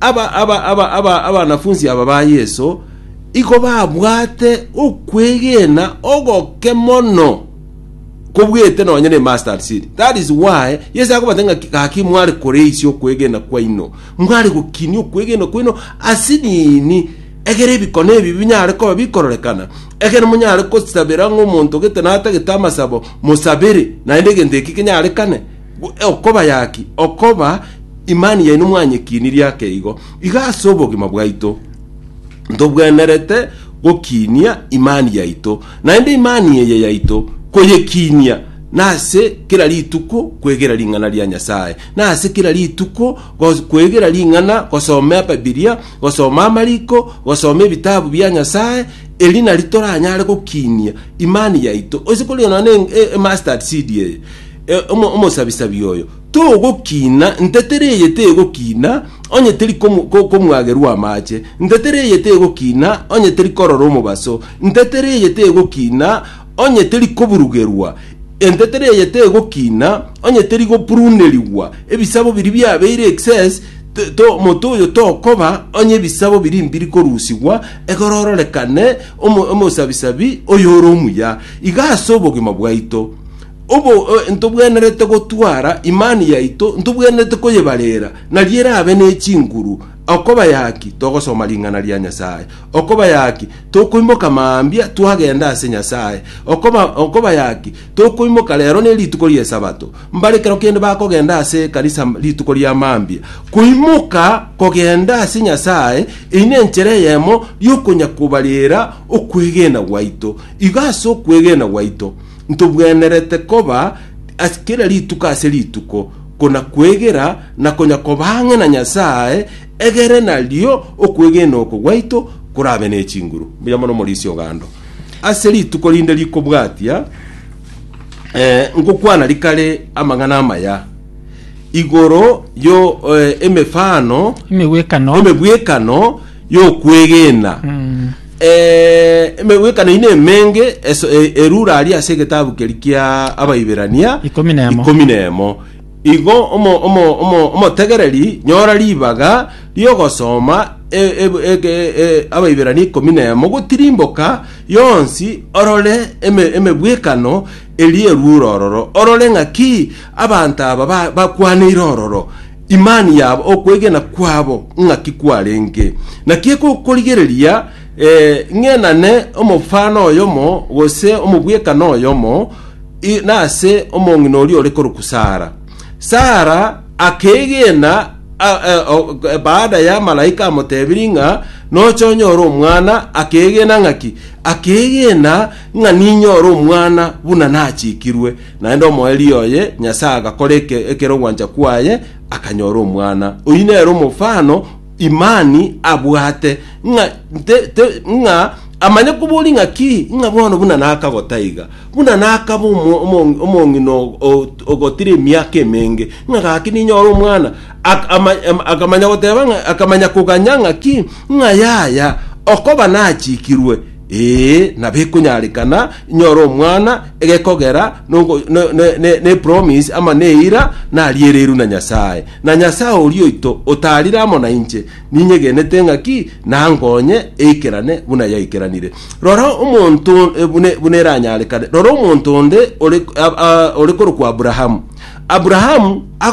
Abanafunsi aba ba Yeso igo babwate okwegena ogoke mono kobwete nonya ne mustard seed. That is why Yeso akobata ng'a gaki mware koreisia okwegena kwaino, mware gokinia okwegena kwaino ase nini egere ebikone ebi binyare koba bikororekana, egere monyare gosabera ng'a omonto gete natagete amasabo mosabere naende egento eki kenyarekane. Okobayaki okoba imani yaino mwanyekinirie ake igo, iga ase obogima bwaito ntobwenerete gokinia imani yaito, naende imani eye yaito koyekinia nase kera rituko kwegera ring'ana ria Nyasae, nase kera rituko gos- kwegera ring'ana gosoma Ebibilia, gosoma amariko, gosoma ebitabu bia Nyasae, eri nari toranyare gokinia imani yaito. Ase kore nonya na e- e mustard seed eye, E, omo- omosabisabi oyo togokina, ntetera eye tegokina, onye teri komu- ko- komwagerwa amache, ntetera eye tegokina, onye teri korora omobaso, ntetera eye tegokina, onye teri koburugerwa, entetera eye tegokina, onye teri goprunerigwa, ebisabo biri biabeire excess, t- to- omoto oyo tokoba onye ebisabo biri mbiri korusigwa, egoro ororekane omo- omosabisabi oyo ore omuya. Iga ase obogima bwaito, Obo eh, ntobwenerete gotwara imani yaito, ntobwenerete koyebarera, nario erabe ne chinguru. Okoba yaki, togosoma ring'ana ria Nyasae. Okoba yaki, tokoimoka mambia twagenda ase Nyasae. Okoba, okoba yaki, tokoimoka rero ne rituko ria Esabato. Mbare kero kende bakogenda ase ekanisa rituko ria mambia. Koimoka kogenda ase Nyasae, eyi nenchera eyemo riokonya kobarera okwegena gwaito. Igo ase okwegena gwaito, Ntobwenerete koba ase kera rituko ase rituko, kona-kwegera na konya kobang'ina Nyasae, egere nario okwegena oko gwaito korabe ne chinguru, mbuya mono Omorisia o Gando. Ase rituko rinde rikobwatia, eh, ngokwana rikare amang'ana amaya igoro yo eh, emefano Emegwekano emebwekano y'okwegena. Eh, emegwekano ine emenge eso- e- erure aria ase egetabu keri kia Abaiberania Ikomi na emo. ikomi na emo. Igo omo- omo- omo- omotegereri nyora ribaga ri'ogosoma e- e- ege- e- Abaiberania ikomi na emo gotirimboka yonsi orore eme- emegwekano eri erure ororo orore ng'aki abanto aba ba- bakwaneire ororo Imani yabo, okwegena kwabo ng'aki kwarenge? Naki egokorigereria ng'enane omofano oyomo gose omobwekano oyomo nase omong'ina oria ore korokwa Sara. Sara akeegena baada ya malaika amotebirie ng'a nocha onyore omwana, akeegena ng'aki? Akeegena ng'a ninyore omwana buna nachikirwe. Naende omoerio oye Nyasae agakora eke- ekerogwancha kwaye, akanyora omwana. Oyio nere omofano Imani abwate, ng'a te- te- ng'a amanye koboria ng'a ki, ng'a bono buna nakagota iga, buna nakaba omo- omo- omong'ina o- o- ogotire emiaka emenge, ng'a gaki ninyore omwana. Ak- ama- ama- Akamanya goteba ng'a, akamanya koganya ng'a ki, ng'a yaya, okoba nachikirwe. Ee, na bekonyarekana inyore omwana, egekogera nongo- ne- ne- ne- nepromise ama neira nariereirwe na Nyasae. Na Nyasae oria oito otarire amo nainche, ninyegenete ng'a ki nankonye eikerane buna yaikeranire. Rora omonto eh, bune- buna eranyarekane, rora omonto onde ore a- a- ore korokwa Aburaham. Aburaham ago